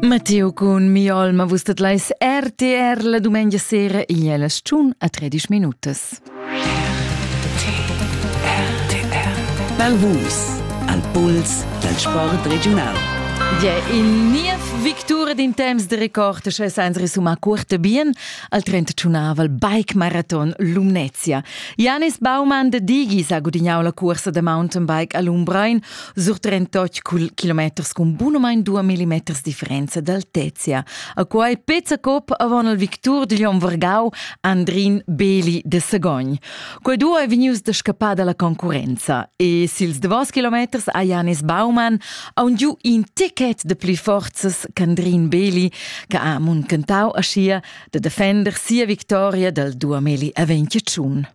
Matteo cun mi olma vus dat leis RTR la dumengia sera igl è la stun a 13 minutas. Val Vus, al puls dal sport regional. Ja, in niev victura d'in temps de record che sans resumar curte bien al 31 bike marathon Lumnezia. Janis Baumann de Digis ha gudignau la cursa da mountainbike a Lumbrein surtrentotg cul kilometers cun bunumein 2 millimeters differenza d'altezia. A quai pezza cop avon il victur digl hom vargau Andrin Beli de Sagogn. Quei duo è vegnius da scappar dalla concurenza e sils davos kilometers a Janis Baumann aun giu in ticket de pli forzas qu'Andrin Beli che ha muncantau aschia de defender sia victoria dal 2021.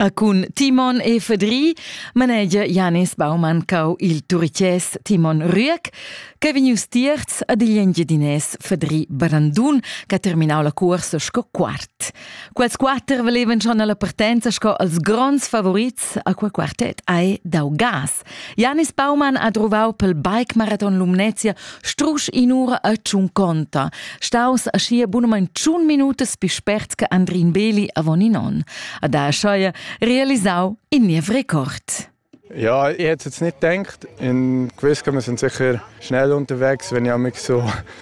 E cun Timon e Fedri manegia Janis Baumann cau il Turiches Timon Rüegg che vegnius tierz ad igl Engiadinès Fedri Barandun che ha terminau la cuorsa sco quart. Quels quater valevan schon alla partenza sco els gronds favorits a quei quartet ai dau gas. Janis Baumann ha druvau pel bike maraton Lumnezia strusch in'ura a Tschunconta, staus aschia bunamein tschun minutas pi spert che Andrin Beli avon in on. Ad ha scheu realisau in niev Rekord. Ja, ich hätte jetzt nicht gedacht. In Quiz kann man sind sicher schnell unterwegs, wenn ich so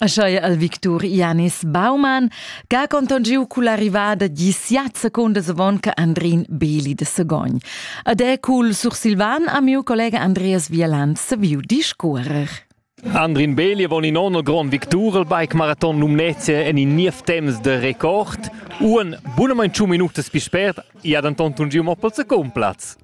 Aschia el victur Janis Baumann che ha contongiu culla arrivada gi siat secundas avon che Andrin Beli de Segogn. Ed è cul sursilvan a miu collega Andreas Vieland saviu discuorer. Andrin Beli avon in onn grond victur al bike marathon Lumnezia en in niev temps de record. Un bunamein tschun minutas pi spert, ia denton tungiu mo pel secund platz.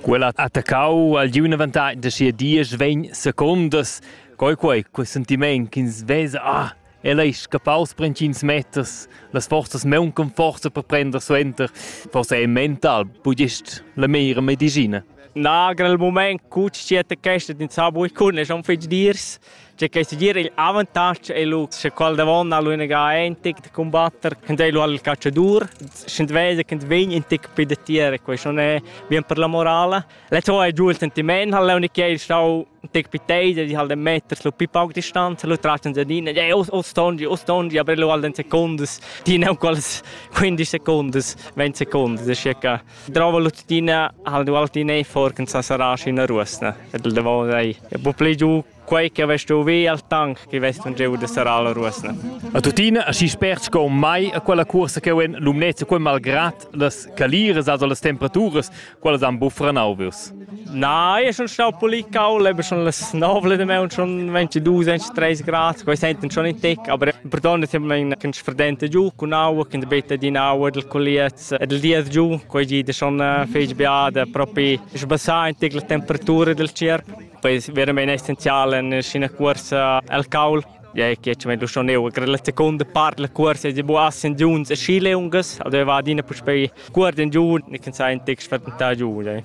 Quella ha attaccau al giuven avantatg da sia dies vegn secundas. Quei quei, quei sentiment ch'ins vesa, ah, el ei scappaus per entgins meters, las forzas mauncan forza per prender suenter. Forsa è mental, budist la meira medicina. Nagen il moment, gut steht der Gäste, den Zabo ich kunde, schon fitz dirs. C'è che segir il avantatg è lu se qual davon ha lu ina ein tic da combatter ed ei lu al calciadur schend vesa che vegn in tic più da tier quei non è bien per la morale le to è giù il sentiment ha l'unic che il stau tic più teide di halt meters lu più pauc distanza lu traccian da din e o o stongi o stongi aber lu al den secondes din un quals 15 secondes 20 secondes è circa Drova l'uttina ha'l duo l'uttina e forca sa saraschi üna ruosna ed el davò ei. E po plü giù quei che avess giovì al tank che vest un gieu da sarà la ruosna. A tuttina aschi spert sco mai a quella cursa che en Lumnezza quei malgrad las caliras also las temperaturas quelles han buffra nauvius. Na, io schon stau pulì caul, eben schon las 9 de me und schon 22, 23 Grad, quei senten schon in tec, aber perdon, dass ich mein kannst verdente giù con aua, kann beta di aua del colliert ed il di es giù, quei di da schon fich bia da propi sbassar in la temperatura del cerc. Poi veramente essenzial in scena corsa al caul Ja, che ci meglio schon eu, che la seconda parte del corso è bu assen giuns e chile ungas, also va adina puspei guarden giù, ne can sai in text vertentà giù. Ja.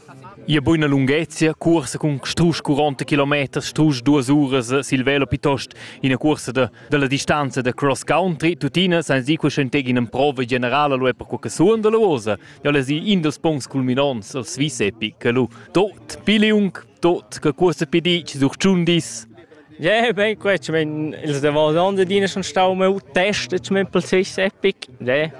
Ia buona lunghezia, corsa con strus 40 km, strus 2 uras sil velo piuttost ina corsa da dalla distanza da cross country tuttina sans dir cuschenteg in emprova generala lu per quella suon dalla uosa ja la si in dos punts culminonts al Swiss Epic che lu tot piliung tot che cuosta pedic sur Chundis Ja, ben, gut. Ich meine, als der Wasser schon stau, mal testet mit dem Swiss Epic. Ja.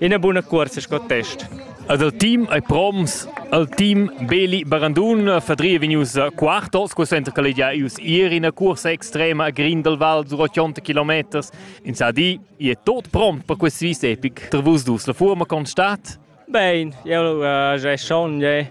Ina buna cuorsa sco test. Ed el team ei proms. El team Beli Barandun fadria vegnius quartos, quei center che ei gia ius ier ina cuorsa extrema a Grindelwald sur 80 kilometers. In sa di, i è tot prompt per quest svis epic. Per vus dus la forma constat? Bene, io uh, è schon, è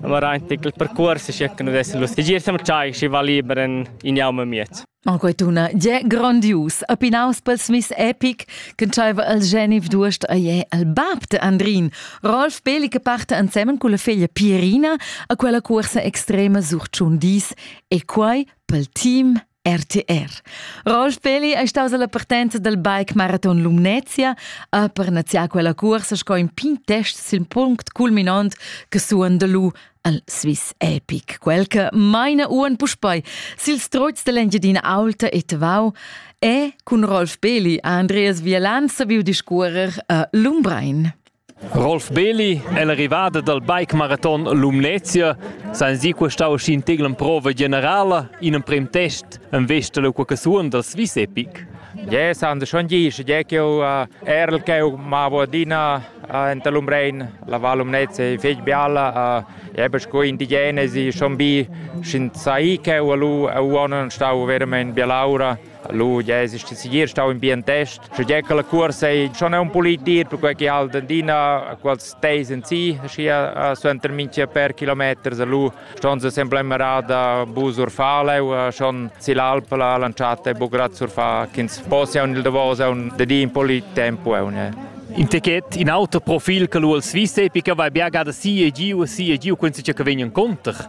Ma era in titel percurs sche che nu dessan lustigier sem tschai schi va liber in in jau me miez. En quei tuna je grandius, a pinaus pels Miss Epic, che tschaiva al Genif Durst a je al bab de Andrin, Rolf Beli che parte ansemen con la figlia Pierina a quella corsa extrema sur Ciundis e quai pel team RTR. Rolf Pelli è staus alla partenza del bike marathon Lumnezia a per naziar quella cursa sco in pin test sil punct culminant che suon de lu al Swiss Epic, quel che maina uan puspei sil stroz dell'Engiadina Alta e Tavau e cun Rolf Pelli a Andreas Vielan saviu discuorer a Lumbrein. Rolf Beli è l'arrivada dal bike-maraton Lumnezia senza questa uschin tegl emprova generala in emprim test en vesta da qualche suon dal Swiss Epic. Je san schon gis, je che ho erl che ho ma vodina enta Lumrein, la Val Lumnezia è fetg bialla, je bes co indigenesi schon bi, schin sai che ho lu, ho on stau veramente bialaura. Lu ja es segir stau in bien test. Sche gia che la cuorsa ei schon un pulit dir, perquei che halt adina quals teis en si, schi suenter minchia per kilometers lu ston se sempre merada bu surfaleu, schon si l'alp la lanciata e bugrat surfa ch'ins possia un il Davos un de di un polit tempo e In ticket, in auto profil che lu als vis epica vai bia gada si e giu, si e giu, quensi che vegnan conter.